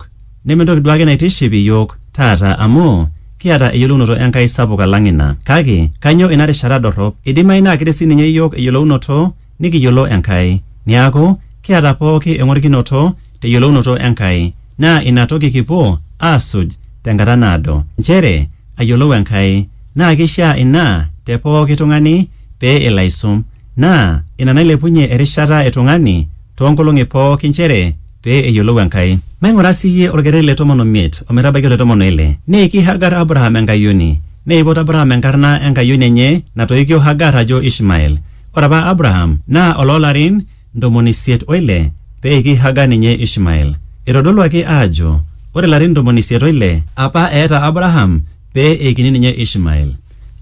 iyiook. Neme entoki duo ake naitiship iyiook taata amu kiata eyiolounoto Enkai sapuk alang ina. Kake kainyioo ina rishata dorrop? Eidimayu naa ketii sii ninye iyiook eyiolounoto nikiyiolo Enkai. Niaku, kiata pooki engorikinoto te yiolounoto Enkai naa ina toki kipuo aasuj te nkata naado. Nchere ayiolou Enkai. Naa keishiaa ina te pooki tung'ani pee elo aisum. Naa ina nailepunyie erishata e tung'ani too nkolong'i pooki nchere pee eyiolou Enkai. Maing'ura sii iyie olkereri le tomon o miet o metabaiki ole tomon o ile. Neiki Hagar Abraham enkayioni. Neipot Abraham enkarna enkayioni enye natoikio Hagar ajo Ishmael. Ore apa Abraham naa oloo larin ntomoni isiet o ile pee eiki Hagar ninye Ishmael. Eitodoluaki aajo ore larin ntomoni isiet o ile apa eeta Abraham pee eikini ninye Ishmael.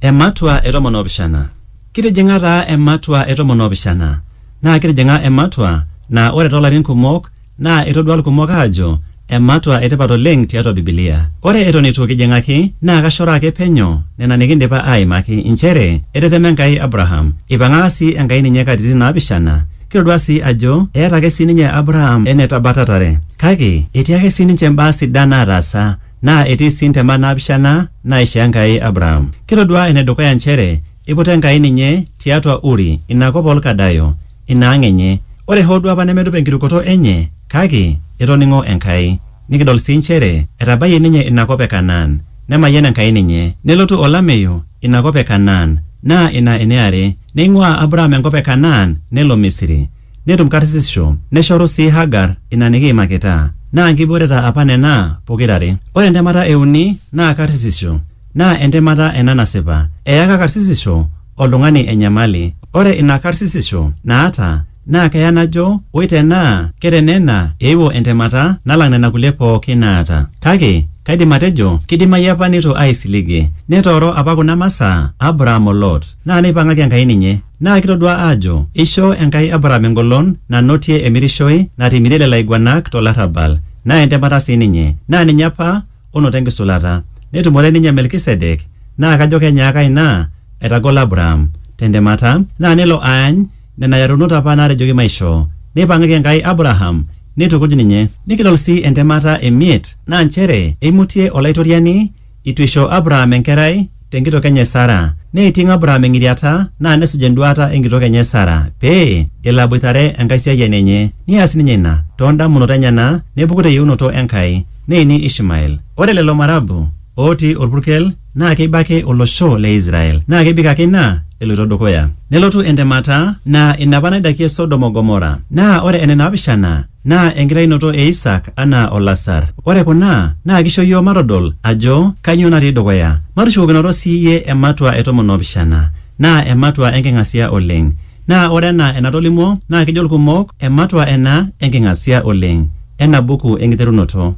Ematua e tomon oopishana. Kitijing'a taa ematua e tomon oopishana. naa kitijing'a ematua naa ore toolarin kumok naa etodua ilkumok aajo ematua etipat oleng tiatua Bibilia. Ore eton eitu kijing'aki naa kashoroo ake penyo nena nikindipa aaimaki inchere etetema Enkai Abraham, eipang'aka sii Enkai ninye katitin naapishana. Kitodua sii ajo eeta ake sii ninye Abraham enetabatatare. Kake etii ake sii ninche imbaa sidan naataasa naa etii sii ntemat naapishana naaishoo Enkai Abraham. Kitodua enedukuya inchere Eiputa Enkai ninye tiatua Uri, ina kop oo Lkadayo, ina ang enye. Ore hoo duo apa nemedup enkirukoto enye, kake etoning'o Enkai. Nikidol sii nchere etabayie ninye ina kop e Kanaan. Nemayian Enkai ninye. Nelotu olameyu ina kop e Kanaan, naa ina ene are. Neing'uaa Abraham enkop e Kanaan nelo Misiri. Netum karsisisho, neshoru sii Hagar ina nikiimakita. Naa nkibooreta apa nena pokira are. Ore entemata e uni naa karsisisho. Naa entemata ena nasipa. Eyaka karsisisho oltung'ani enyamali. Ore ina karsisisho naata naa keya najo oi tenaa ke te nena eewuo entemata nalang nena kulie pooki naata. Kake kaidim atejo keidimayu apa neitu aaisiligie. Netooro apa kuna masaa Abraham o Lot. Naa neipang'aki Enkai ninye. Naa kitodua aajo eishoo Enkai Abraham engolon nanotie emirishoi natimirie lelo aiguanak to larrabal. Naa entemata sii ninye. Naa ninye apa ono te nkisulata, netumore ninye Melkisedek, naa kajo kenyaaka ina aitagol Abraham te ntemata, naa nelo aany nena yarunot apa naatejoki maishoo. Neipang'aki Enkai Abraham neitukuj ninye. Nikidol sii entemata e miet, naa nchere eimutie Olaitoriani eitu eisho Abraham enkerai, tenkitok enye Sara. Neiting Abraham eng'iriata naa nesuj enduaata enkitok enye Sara pee elo aboitare enkaisiayiani enye. Neas ninye ina too ndamunot enyena nepuku te yieunoto Enkai neini Ishmael. Ore lelo marabu ootii olpurkel naa keiba ake olosho le Israel naa kebik ake ina eloito dukuya. Nelotu entemata naa ina apa naidakie Sodom o Gomorra. Naa ore ene naapishana, naa enkitainoto e Isak anaa olasar. Ore kuna naa keisho iyiook matodol ajo kainyoo natii dukuya. Matushukokinoto sii iyie ematua e tomon oopishana naa ematua enking'asia oleng. Naa ore anaa enatolimuo naa kejo ilkumok ematua ena enking'asia oleng ena buku Enkiterunoto.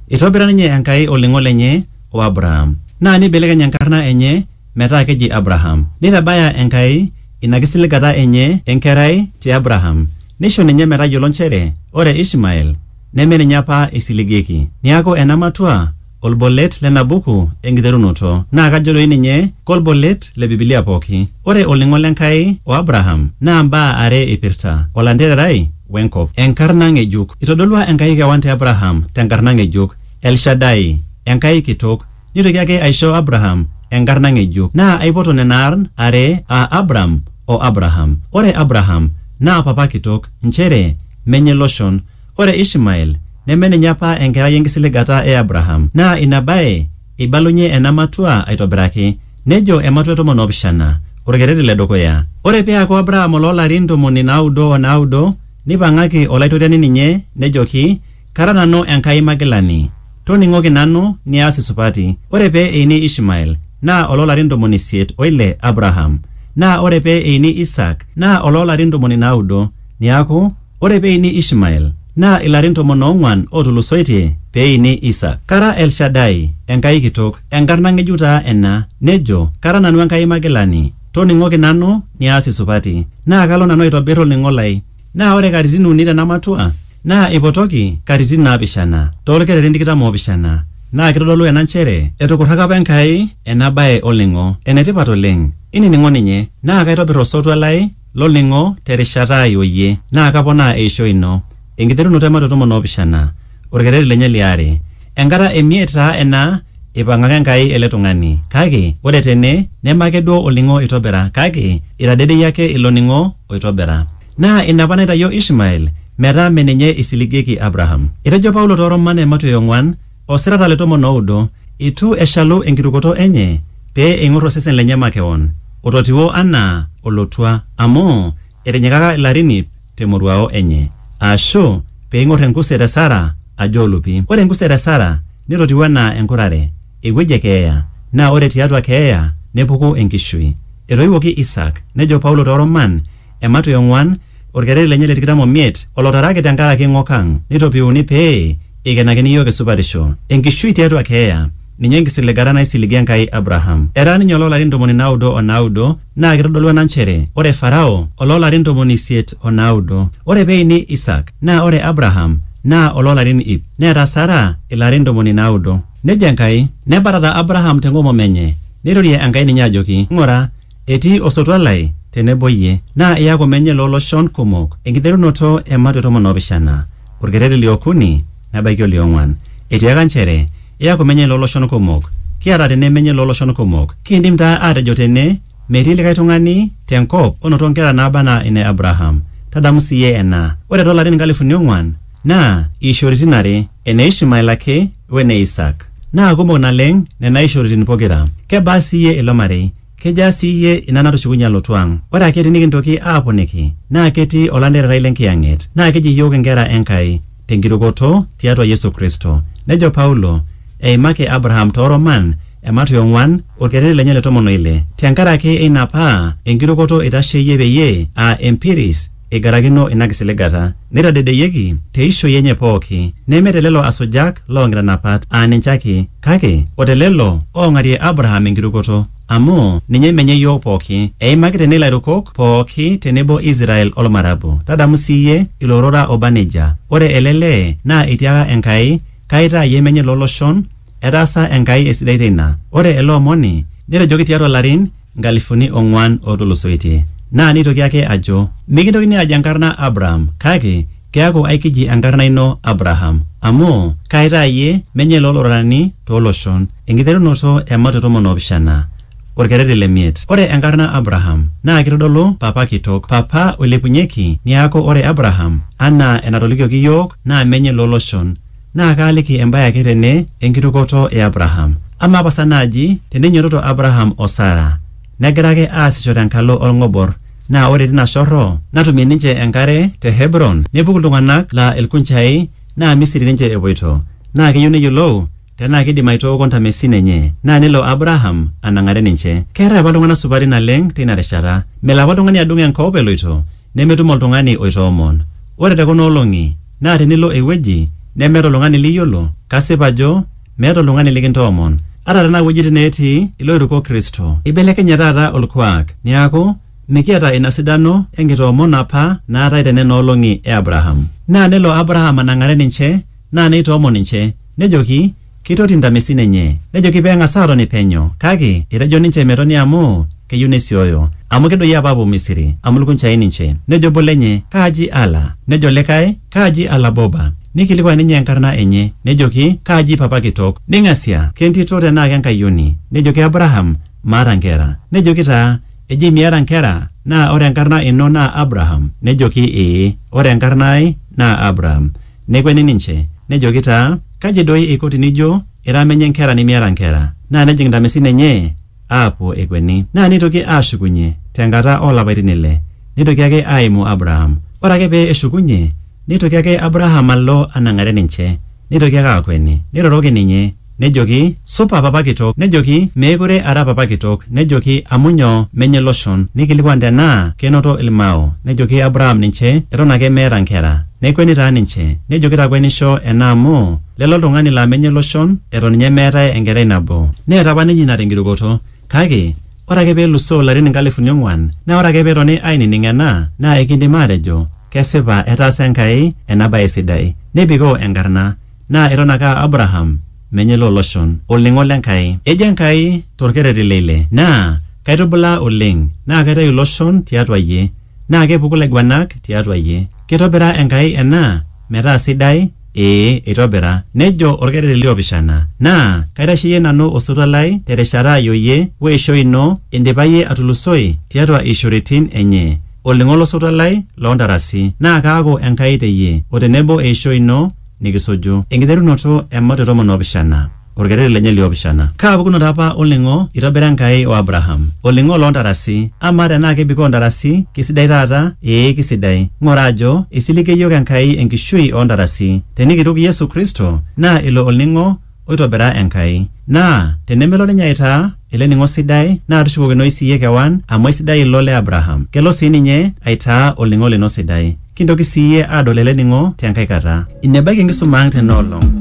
Eitobira ninye Enkai olning'o lenye o Abraham naa neibelekeny enkarna enye metaa keji Abraham. Neitabaya Enkai ina kisiligata enye e nkerai te Abraham neisho ninye metayiolo nchere ore Ishmael neme ninye apa eisiligieki. Niaku ena matua olbolet lena buku enkiterunoto naa kajo doi ninye kolbolet le Bibilia pooki. Ore olning'o le Nkai o Abraham naa mbaa are eipirta, olantererai we nkop. Enkarna ng'ejuk. Eitodolua Enkai kewan te Abraham te nkarna ng'ejuk, El Shaddai, Enkai kitok. Neitoki ake aisho Abraham enkarna ng'ejuk, naa aipoto nena aarn are aa Abram o Abraham. Ore Abraham naa papa kitok, nchere menye iloshon. Ore Ishmael neme ninye apa enkerai enkisiligata e Abraham. Naa ina bae eibalunye ena matua aitobiraki. Nejo ematua e tomon oopishana, olkereri le dukuya. Ore pee eaku Abraham oloo larin ntomoni naaudo o naaudo, neipang'aki Olaitoriani ninye, nejoki, Kara nanu Enkai Magilani, toning'oki nanu niaas isupati. Ore pee eini Ishmael, naa oloo larin ntomoni isiet o ile Abraham, naa ore pee eini Isaak, naa oloo larin ntomoni naudo. Neaku, ore pee eini Ishmael, naa ilarin tomon oong'uan ootulusoitie pee eini Isaak. Kara El Shaddai, Enkai kitok. Enkarna ng'ejuk taa ena. Nejo, Kara nanu Enkai Magilani, toning'oki nanu niaas isupati. Naa kalo nanu aitobir olning'o lai. Naa ore katitin uni tena matua naa eipotoki katitin naapishana too lkererin tikitam oopishana naa keitodolu ena nchere etukurraka apa Enkai ena bae olning'o. Enetipat oleng inining'o ninye naa kaitobir osotua lai lo lning'o te rishata ai o iyie naa kaponaa eishoi ino. Enkiterunoto e Mateo tomon oopishana. Olkereri lenye li are. Enkata e miet taa ena eipang'aka Enkai ele tung'ani. Kake ore tene neme ake duo olning'o oitobira kake eitadedeyie ake ilo ning'o oitobira. Naa ina apa naitayio Ishmael metaa mme ninye eisiligieki Abraham. Etejo Paulo too Roman ematioi e ong'uan o sirata le tomon o oudo, Eitu eshalu enkitukuto enye pee eing'or osesen lenye makewon, ototiwuo anaa olotua, amu etinyikaka ilarin iip, te moruao enye, aashu pee eing'or enkuset e Sara ajo olupi. Ore enkuset e Sara netotiu anaa enkurare, ewueji e keeya, naa ore tiatua keeya nepuku enkishui. Etoiwuoki Isaak, nejo Paulo too Roman ematua e ong'uan, olkereri lenye le tikitam o miet, olotaraki te nkaraki ng'ok ang, neitopiuni pee Eikenakini iyiook esupatisho e nkishui tiatua keeya, ninye enkisiligata naisiligie Enkai Abraham. Etaa ninye oloo larin ntomoni naaudo o naaudo naa keitodolu ena nchere ore Farao oloo larin ntomoni isiet o naaudo. Ore pee eini Isaak naa ore Abraham naa oloo larin iip neeta Sara ilarin ntomoni naaudo. Nejo Enkai, Nebatata Abraham te ng'omom enye, neirorie Enkai ninye ajoki, Ng'ura, Etii osotua lai te nebo iyie, naa iaku menye loo loshon kumok, enkiterunoto e matwe tomon o pishana, olkereri li okuni nebaiki oli ong'uan. Etiaka nchere, Iaku menye loo loshon kumok. Kiata tene menye loo loshon kumok. Kiindim taa aatejo tene, metii likae tung'ani te nkop onoto nkera naaba anaa ine Abraham. Tadamu sii iyie ena, ore too larin nkalifuni ong'uan, Naa iishoritin are, ene Ishmael ake o ene Isaak. Naa kumok naleng' nena ishoritin pokira. Kebaa sii iyie ilo marei? Kejaa sii iyie ina natushukunye alotu ang'? Ore ake tinikintoki aaponiki naa ketii olantererai le Nkiyang'et naa keji iyiook inkera e Nkai te nkirukoto tiatua Yesu Kristo. Nejo Paulo eimaki Abraham too Roman emat e ong'uan olkereri lenye le tomon o ile te nkaraki eina paa enkirukoto eitasheyie peyie aa empiris eigarakino ina kisiligata, neitadedeyieki te ishoi enye pooki, neme te lelo asujak loo nkitanapat aa ninche ake, kake o te lelo oong'arie Abraham enkirukoto, amu ninye menye iyiook pooki, eimaki tene ilairukok pooki te nebo Israel o lmarabu. Tadamu sii iyie ilo rora oba neijia, Ore ele lee naa eitiaka Enkai, Kaitaa iyie menye loo loshon, Etaasa Enkai esidai teina. Ore ele omoni netejoki tiatua larin nkalifuni ong'uan ootulusoitie. Naa neitoki ake ajo, Mikintokini aaj enkarna Abraham, kake keaku aikiji enkarna ino Abraham, amu kaaitaa iyie menye loo lororani too loshon. Enkiterunoto e Mato tomon oopishana, olkerreti le miet. Ore enkarna Abraham naa keitodolu Papa Kitok, Papa oilepunyeki, neaku ore Abraham anaa enatolikioki iyiook naa menye loo loshon. Naa kaaliki embae ake tene enkitukoto e Abraham. Amaa pasa naaji teneinyototo Abraham o Sara negira ake aasisho tenkalo olng'obor naa ore tina shorro natumie ninche enkare te Hebron nepuku iltung'ana laa ilkunjai naa Misiri ninche epuoito naa keyieu neyiolou tenaa keidim aitooko ntamesin enye naa nelo Abraham anang'are ninche. Keetae apa iltung'ana supati naleng teina rishata. Melo apa oltung'ani adung enkop eloito nemetum oltung'ani oitoomon. Ore te kuna olong'i naa tenilo ewueji nemeeta oltung'ani liyiolo, kasip ajo meeta oltung'ani likintoomon. Ata tenaa iwuejitin neetii ilooiruko Kristo, eibelekenye taata olkuak neaku mikiata ina sidano e nkitoomono apa naatae te nena olong'i e Abraham. Naa nelo Abraham anang'are ninche naa neitoomon ninche, nejoki, Keitoti intamesin enye. Nejoki pee eng'as aatoni penyo. Kake etejo ninche metoni amu keyieu nesioyo. Amu kedoyio apa aapuo Misiri, amu ilkunjai ninche. Nejo obo lenye, Kaaji Ala? Nejo likae, Kaaji Ala Boba. Neikilikuan ninye enkarna enye. Nejoki, Kaaji papa kitok? Neing'asia, Kentito tenaa kenkayioni? Nejoki Abraham, Maata nkera. Nejoki taa, Eji miata nkera? Naa ore enkarna ino naa Abraham? Nejoki, Ee, ore enkarna ai naa Abraham. Nekweni ninche, nejoki taa, Kaji doi eiko tinijo ira menye nkera nimiata nkera? Naa nejing ntamesin enye aapuo ekweni. Naa neitoki aashukunye te nkata oo lapaitin ile, neitoki ake aaimu Abraham. Ore ake pee eshukunye, neitoki ake Abraham alo anang'are ninche, neitoki ake aakweni, neiroroki ninye. Nejoki, Supa, papa kitok. Nejoki, Meekure ara papa kitok. Nejoki, Amu nyoo? Menye iloshon. Neikilikuan tenaa keinoto ilmao. Nejoki Abraham ninche, Eton ake meeta nkera. Nekueni taa ninche. Nejoki, Takuenisho ena amu, lele oltung'ani laa menye iloshon, eton ninye meetae enkerai nabo. Neeta apa ninye ina tenkirukoto. Kake, ore ake pee elusoo ilarin inkalifuni ong'uan, naa ore ake pee etoni ainining ena, naa eikindim aatejo, Kesipa etaasa Enkai ena bae sidai. Nebikoo enkarna. Naa eton ake aa Abraham, menye loo loshon, olning'o le Nkai. Ejo Enkai to lkerreti le ile, Naa kaitubulaa oleng, naa kaitayu iloshon ti atua iyie, naa kepuku ilaiguanak ti atua iyie. Keitobira Enkai ena metaa sidai? Ee, eitobira. Nejo olkerreti li opishana, Naa kaitasheyie nanu osotua lai te rishata ai o iyie, o eishoi ino, indipa iyie atulusoi ti atua iishoritin enye, olning'o lo sotua lai loo ntarasi, naa kaaku Enkai te iyie, o tenebo eishoi ino, nikisuju. Enkiterunoto e Matua tomon oopishana, olkereri lenye liopishana. Kaa pukunoto apa olning'o eitobira Enkai o Abraham? Olning'o loo ntarasi. Amaa tenaa kebikoo ntarasi? Keisidai taata? Ee, keisidai. Ng'ura ajo, eisiligie iyiook Enkai enkishui oo ntarasi. Tenikituk Yesu Kristo, naa ilo olning'o oitobira Enkai. Naa tenemelo ninye aitaa ele ning'o sidai naa tushukokinoi siyie kewan amu aisidai ilo le Abraham. Kelo sii ninye aitaa olning'o lino sidai. Kintoki siyie aadol ele ning'o te nkae kata. Ine ebaiki enkisuma ang' tena olong'.